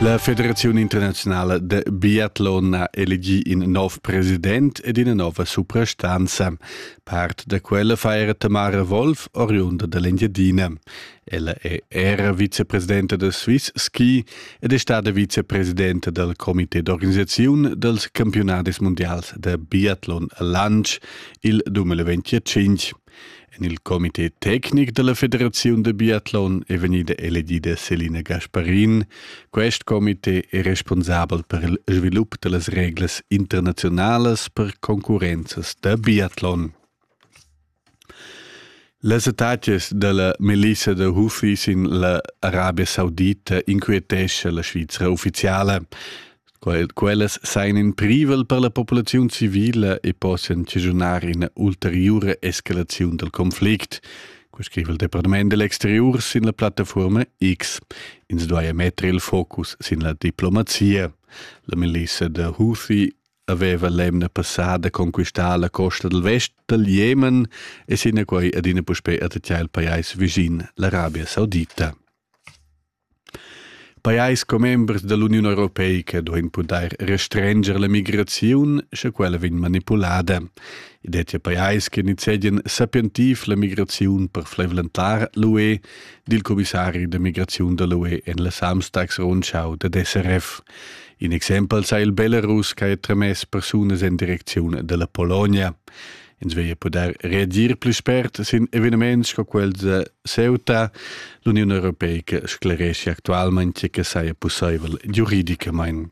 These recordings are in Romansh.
La Federaziun internaziunala de biatlon ha elegi in nov president ed ina nova suprastanza. Part da quella feiera Tamara Wolf, oriunda dell'Engiadina. Ella è era vicepresidenta del Swiss Ski ed è stata vicepresidenta del comité d'organisazione dels campionadis mondials de biathlon lanch il 2025. En il comité tecnic dalla Federaziun da biatlon è vegnida elegida Selina Gasparin. Quest comité è responsabel per il svilup dallas reglas internazionalas per concurrenzas da biatlon. Las attacas dalla Melissa da Hufi sin la Arabia Saudita inquietescha la Svizra ufficiala. Quel, quellas sain in privel per la populaziun civila e possian cischunar ina ulteriura escalaziun dal conflict, co scriva il Departament dell'exterior sin la plattafuorma X. Ins duaja metter il focus sin la diplomazia. La milissa da Houthi aveva l'emna passada conquistà la costa del vest dal Jemen e sinaquai adina puspè attacchà il pajais visin, l'Arabia Saudita. Pajais commembers da l'Uniun europeica duain pudair restrenscher la migraziun, sche quella vegn manipulada. I dettia pajais che nizzegian sapientiv la migraziun per flavlentar l'UE, di il commissari da migraziun da l'UE en la Samstagsrundschau dad SRF. In exempel sa il Belarus che ha tramess persunas en direcziun da la Polonia. ins veglia pudair reagir pli spert sin eveniments sco quels da Ceuta. L'Uniun Europeica scleresce actualmain che saja pussaivel giuridicamain.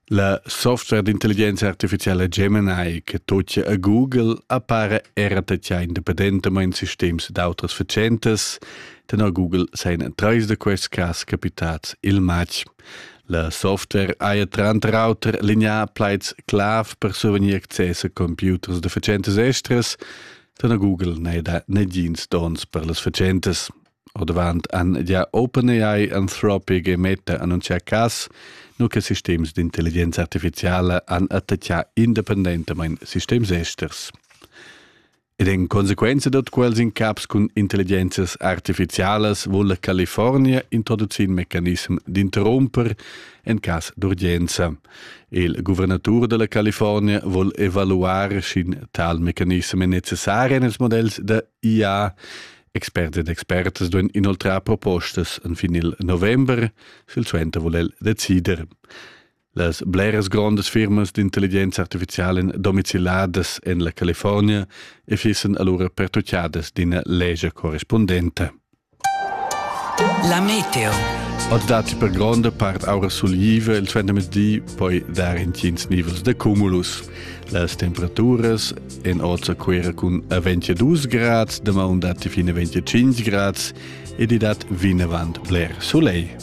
La software d'intelligenza artificiala Gemini che tocia a Google appara era tatgà independentamain sistems d'autras fatschentas. Tenor Google seien treis da quests cas capitads il matg. La software haja tranter auter lineà plaids-clav per survegnir access a computers da fatschentas estras, da na Google n'è da negins dons per las fatschentas. Ordavant han ja OpenAI Anthropic e Meta annunzià cas, nu che sistems d'intelligenza artificiala han attaccà independentamain sistems esters. Ed en consequenza da quels incaps cun intelligenzias artificialas vuol la California introducir in mecanism d'interromper en cas d'urgenza. Il guvernatur della California vuol evaluare sch'in tal mecanism è necessari nels modells da IA. Experts ed expertas duan inoltrar propostas en fin il november, sil suenter vuol el decider. Las bleras grondas firmas d'intelligenza artificiala domiciliadas en la California e fissan allura pertutgadas d'ina legia correspondenta. La meteo. Od dati per gronda part aura sulliva il tvendemezdi poi dar intgins nivels de cumulus. Las temperaturas en oza quera cun a 22 grads, de maun dati fine 25 grads ed i dat vinavant bler soleil.